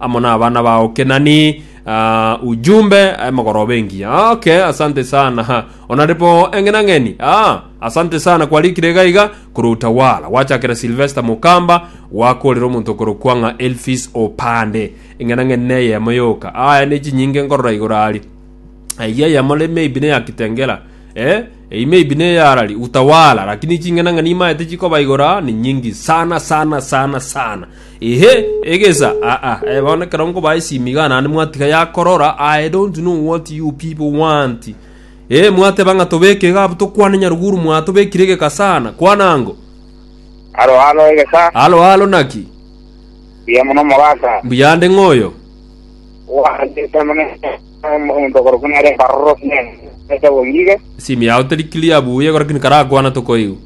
amo n'abana bao Kenani uh, ujumbe emogoroba engiya okay asante sana ha onaripo eng'enang'eni ah, asante sana kwarikire gaiga korwa utawala gwachakera silvester mukamba gwakorera omonto korokwa ng'a elfis opande eng'enang'eni neyemo yoka aya nechinyinge nkorora igoro ari aiya yamore maybe ne ya kitengela eh ei maybe ne ya rari utawala lakini chingena ngani maete chikoba igora ni nyingi sana sana sana sana Inhe, egesa, aa, eh, bono ekero nkoba esimi igaa naende mwatiga yakorora, I don't know what you people want. Eh, mwateba ng'a tobeke igaa abwo tokwane nyaruguru mwaa tobekire egeka sana. Kwana ango. Halo, halo, egesa. Halo, halo, naki? Buya mono mogaka. Mbuya nde ng'oyo. Wandete mono omonto okorokwa nere embaroro sinene. Ete bongige. Esimi yao teri clear buya, ekero kini karakwana tokoigwa.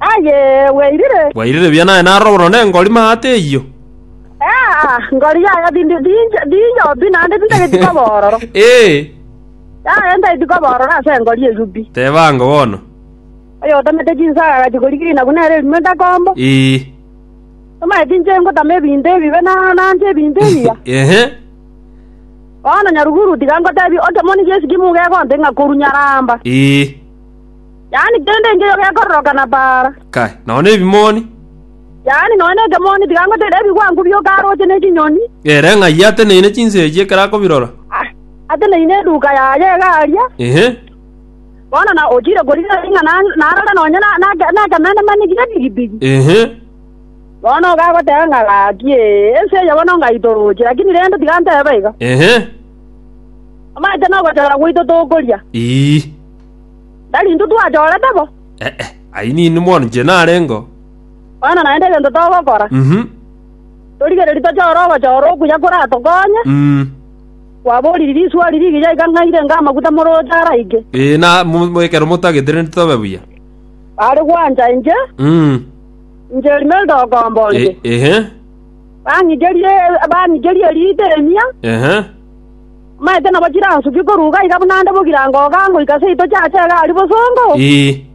Aye, bwairire. Bwairire buya naye narore bono nengori maate eyio. Aa, ngori yaye bindi binche, binyobi, naende bintageti koba ororo. Ee, Yaye ntageti koba ororo ase engori eyio pi. teba ango bono. Oyo otamete chinsaga agachi korika inagu nere erimo etakombo. Ee, Tomaeti inche ngotama ebinto ebibe na nanche ebinto ebiya. ehe, Bono nyaruguru tiga ngotebie, otomoni Yesu ki mugegonte ng'a koru nyaramba. ee, yaani kende engiya gekororokana baara, Kae, nonya nebimoni. yaani nonya nekemoni tiga ngoteera ebigwangu bi'okaarooche ne chinyoni, Ere ng'ai ateneine chinsechi ekero akobirora? a- ateneine eduka yaye egaaria, Ehe. bono na ochiire korigia ring'a na- narore nonya na- nake- nekemenemani gi'epigipigi, Ehe. bono iga agoteba ng'a gaki, ee, ense eye bono ngaitoroche, lakini rende tiga ntebe iga, Ehe. omanyete nogochora gwaito tokoria. Ii. Tari intwe twachorete bo? Eh, eh, ayio nini bono inche narengeo. Bono naende egento togokora, Mhm. torigererie tochore ogochora okuya koratokonye. Mm. Kwaboririe risuari rigiya iga ng'a irenge amaguta moroche araike. Eh, na mu- mu- ekero motagete rende tobe buya. Bare gwancha inche, Mm. inche Imelda okomba Eh, onde. ehe. Bang'icherie bang'icherie riita emia, Ehe. Maete nabo chiransukio koruga iga buna nde bogira ngoga ngoika seito chiache egari bosongo, Ii,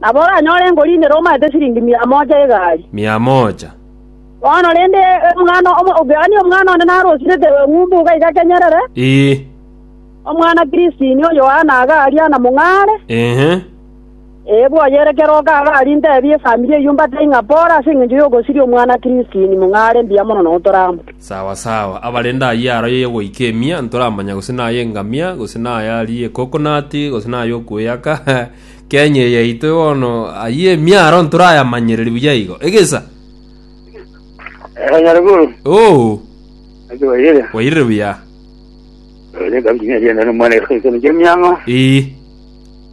nabo oranyore ngorindera omaete siringi mia mocha y'egari. mia mocha. Bono rende omwana omo- okeani omwana onde narosirete eng'umbu iga igakenyerere, Ii, omwana Kristini o Yohana agaria na mong'are, ehe. Ee, bwayere kera okabe aria intebie efamiri eyio mbatae ng'a pore ase engencho y'ogosiria omwana Christine, mong'a are mbuya mono na otorambu. Sawa sawa, abarende ayio aro ye goika emia, ntoramanya gose naye engamia, gose naye arie ekokonati, gose naye okweyaka, Kenya eye yaito bono, ayio emia aro ntorayamanyereria buya igo. Egesa? Ee, Nyaruguru. Oo, Naki wairire? wairire buya. Wairire kabisa, niye ndienda nomwana ekero ekero kia emiang'o. Ee.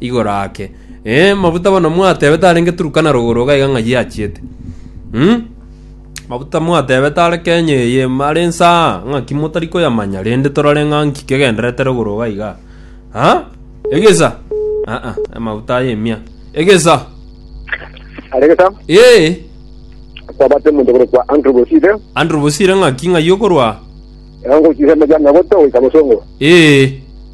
igoro ake. Ee, mabuta bono mwatebete arenge Turkana rogoro iga iga ng'ai achiete. Umm. Mabuta mwatebete are Kenya eye are inse aa, ng'aki motari koyamanya rende torore ng'a nki kegendererete rogoro iga iga. Ha? Egesa. Ah ah, amabuta aya emia. Egesa. Aregesa, Ee, kwabate omonto okorokwa Andrew Bosire, Andrew Bosire ng'aki ng'ai okorwa? eongo chisemo chia nyagoto goika bosongo. Ee.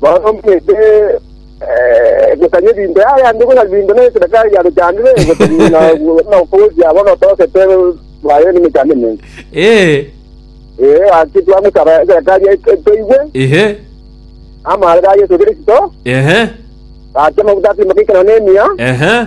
Baromete egetanyi ebinto yaye ande buna ebinto na esedaka eria ruchandire egotenyi na okogochia abana otoosete baye n'emechando emenge. Ee, Ee, gaki twamosaba esedaka eria etoigwe, ehe, amaarera a Yeso Kristo, ehe, gaki amaguta atimoka ikerero na emiya, ehe.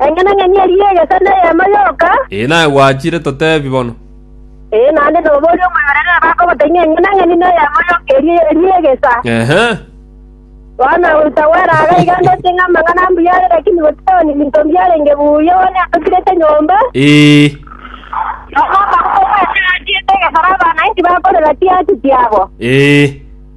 Engenang'eni eria egesa n'eyemo yoka. Ee, naye gwachire totebi bono. Ee, naende nobe oria omoyorere aba akogoteng'ia engenang'eni n'eyemo yoka eria eria egesa. Ehe. Bono tagwera iga iga ndete ng'a amang'ana ambuya are lakini gotiga onye binto mbiarenge buya bono atotigete nyomba. Ee. Nonya omokungu oyo achiete egesara abana inki bakorera chiachi chiabo? Ee.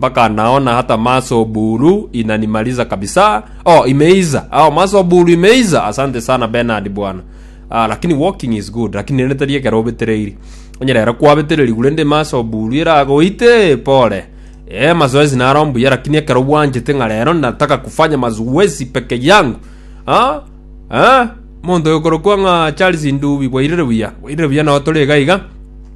Baka nao na hata maso buru inanimaliza kabisa oh imeiza oh maso buru imeiza asante sana Bernard bwana ah, lakini walking is good lakini nende tari ekero obetereiri onyerera kwabetereri gurende maso buru eragoite pole eh mazoezi naro mbuya lakini ekero bwanjete ng'a rero nataka kufanya mazoezi peke yangu ah ah monto yokorokwa ng'a Charles Ndubi bwairire buya bwairire buya nao tore iga iga